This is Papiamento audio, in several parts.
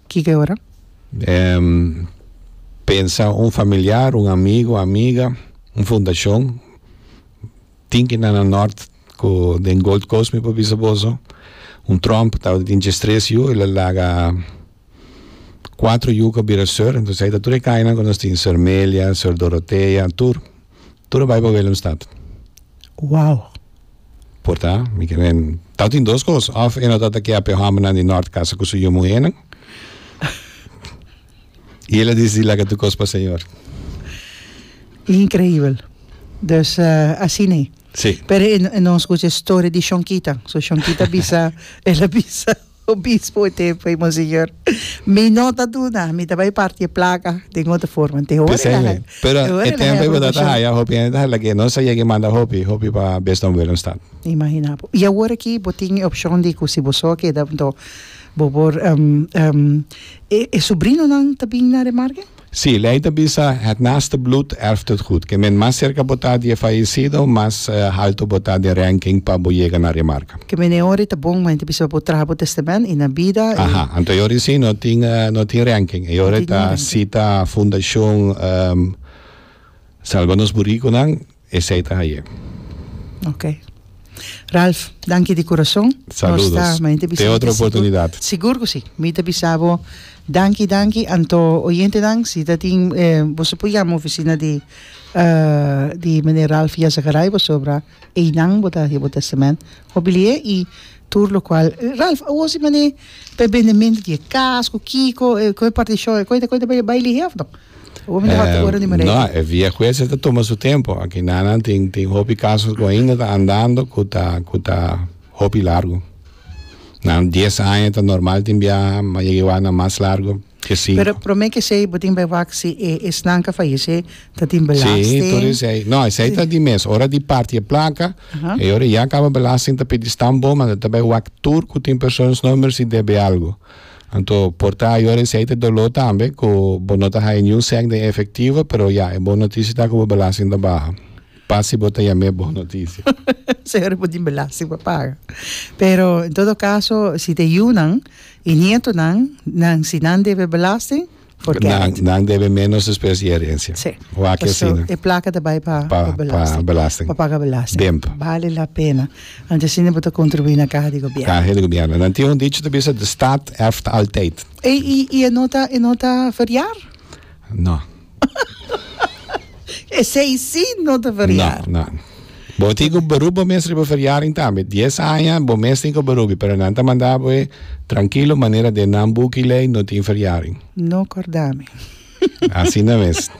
Kiko e ora? Pensa un familiar, un amigo, amiga, un fundacion. Tin ki na na nort ku den Gold Coast mi por bisa boso. Un tromp tabata tin djes tres yu el a laga kuater yu ku a bira sor. Entonces ai ta tur e kainan ku nos tin, Sor Melia, Sor Dorotea, tur. Tur e Bijbel Willemstad. Wow! Por ta, mi ke wen. Tau tin dos kos, of e no ta ta ke ape hòmbernan di nòrt kasa ku su yu muhénan, i el a disidi laga tur kos pa Señor. Inkreibel. Dus asina i. Si. Pero e no skucha e storia di Shonky ta. So Shonky ta bisa, el a bisa. Obispo e tempo ey monseñor. Mi no ta duna, mi ta bay parti e placa den otro forma. Te hoor e laga. Pero e tempo ey botata haya hopi hende ta hala ke no sa yeki manda hopi hopi pa bes don Willemstad. Imagina bo. Y awor aki bo tin e opcion di cu si bo so a keda enton bo por e sobrinonan ta bin na Remarken? Sí, lei ta bisa, Het naaste bloed erft het goed. Ke men mas serka bo ta di e fayecido, mas halto bo ta den ranking pa bo yega na remarka. Ke men e ora ta bon, men ta bisa bo traha bo testament i na bida e. Aha, anto e ora sí no tin, no tin ranking. E ora ta sita fundashon Salba Nos Buricunan. Esei ta haye. Ok. Ralph, danki di kurason. Saludos. Te otro oportunidad. Sigur ku si. Mi ta bisa bo danki danki. Anto oyentenan si ta tin bo su por yama ofisina di di meneer Ralph Yessagaray pasobra einan bo ta haci bo testament. Hobilié i tur lokual. Ralph, awor si man'é pa e bendementu di e kas ku kiko, ku e partishon, e koita koita bai lihé òf no? Awor mi ta hòt ora di manera aki. E via kuesa ta tuma su tempu. Aki nan nan tin tin hopi kaso ku ainda ta andando ku ta ku ta hopi largu. Na dies aña ta normal tin biaha, ma yega i wak na mas largu. Pero prome ke esei bo tin bay wak si e esnan ka fayeshe ta tin belasting. Sí, tur esei. No, esei ta di mes. Ora di parti e plaka, e ora ya kaba belasting ta pidi stamp bo, manda ta bay wak tur ku tin persoonsnummer si debe algu. Anto por ta e ora esei ta doló tambe ku bo no ta haya niun sèk den efektivo, pero ya e bon notisia ta ku bo belasting ta baha. Pa si bo ta yam'é bon notisia. Señor e por tin belasting pa paga. Pero en todo caso si ta e yunan y nietonan nan si nan debe belasting forget it. Nan nan debe menos despues di herencia. Sí. Wak e asina. Paso e placa ta bay pa pa belasting. Pa belasting. Pa paga belasting. Demp. Bale la pena. Anto asina bo ta contribui na caja di gobierno. Caja di gobierno. Nan tin un dicho ta bisa de staat erft altijd. Ey y e no ta e no ta variar? No. Esei si no ta feriar. No, no. Bo tin ku berup bo mes riba feriaring tambe. Dies aña bo mes tin ku berubi, pero nan ta manda bo e trankilo manera den nan buki lei no tin feriaring. No kordami. Asina mes.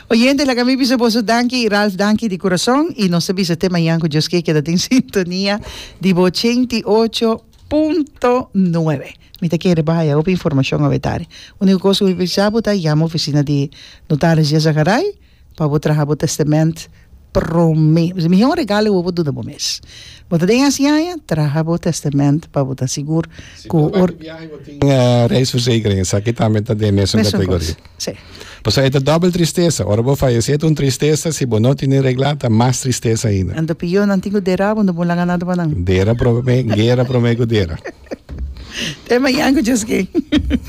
Oyente, laga mi bisa boso danki i Ralph danki di kurason i nos ta bisa te mañan ku Dios ke keda den sintonia di bo ochenta i ocho punto nuebe. Mi ta kere pa haya hopi informashon awe tari. Uniko kos ku mi bisa bo ta yama ofisina di Notaris J. Zagaray pa bo traha bo tèstement promé. Mi hi un regalo ku bo por duna bo mes. Bo ta den e hasiaña, traha bo tèstement pa bo ta sigur ku. Si bo na ku biaha i bo tin reisversekering, esaki tambe ta den e mesun kategoria. Sí. Pasobra e ta dobel tristesa. Ora bo fayesé ta un tristesa, si bo no tene reglá ta mas tristesa ainda. Anto pio nan tin ku dera bo no bon laga nada pa nan. Dera prome, guera prome ku dera. Tema i anguchas ke.